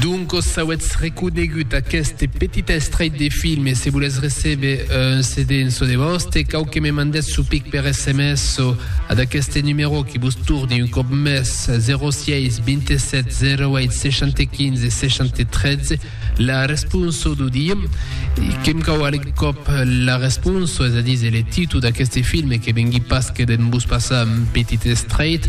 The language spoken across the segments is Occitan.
Donc os auetz reconegut aqueste petit estrait de film e se volètz recéber un CD en çò de vòste, cau que me mandètz çò pic per sms o ad aqueste numerò que vos torni un còp mès, 06 27 08 60 15 60 13, la responso d'o dia. Que me cau alec còp la responso, es a díser le títol d'aqueste film que vengui pas que d'en vos passar un petit estrait,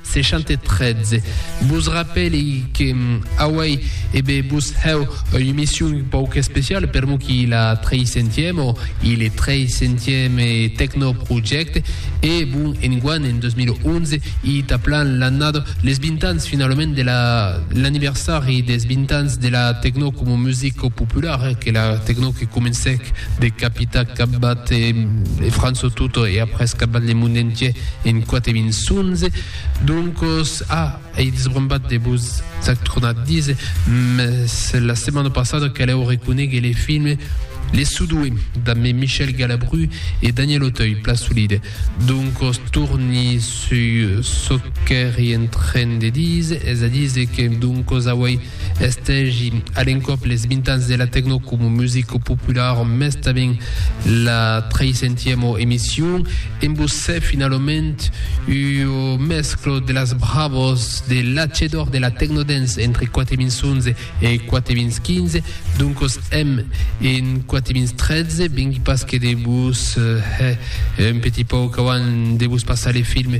613. Vos rapèli que auei e be vos hèu ua emission un pauc especiala per mo qui la treisentièm o i le treisentièm Tecno Project e bon enguan en 2011 i ta plan l'annada les 20 ans finalament de la l'anniversari des 20 ans de la Tecno coma musica populara que la Tecno que comencèc de capita capbat e França tota e après capbat le monde entier En quate min sonze, doncos, a, ei desbrombat de vos ac tronat dis, mès la setmana passada calèu reconéguer le film Les Sudoués, damb Me Michel Galabru e Daniel Auteuil, plan solide. Doncos torni suu çò qu'èri en tren de díser, es a díser que, doncos, auei Estègi a l'encòp les 20 ans de la tecno coma musica populara, mès tanben la treisentièma emission. En Bossè, finalament, ua mescla de las bravas de l'atge d'òr de la tecnodance entre 4011 e 4015, doncas èm en 4013, vengui pas que de vos hè un petit pauc avant de vos passar le film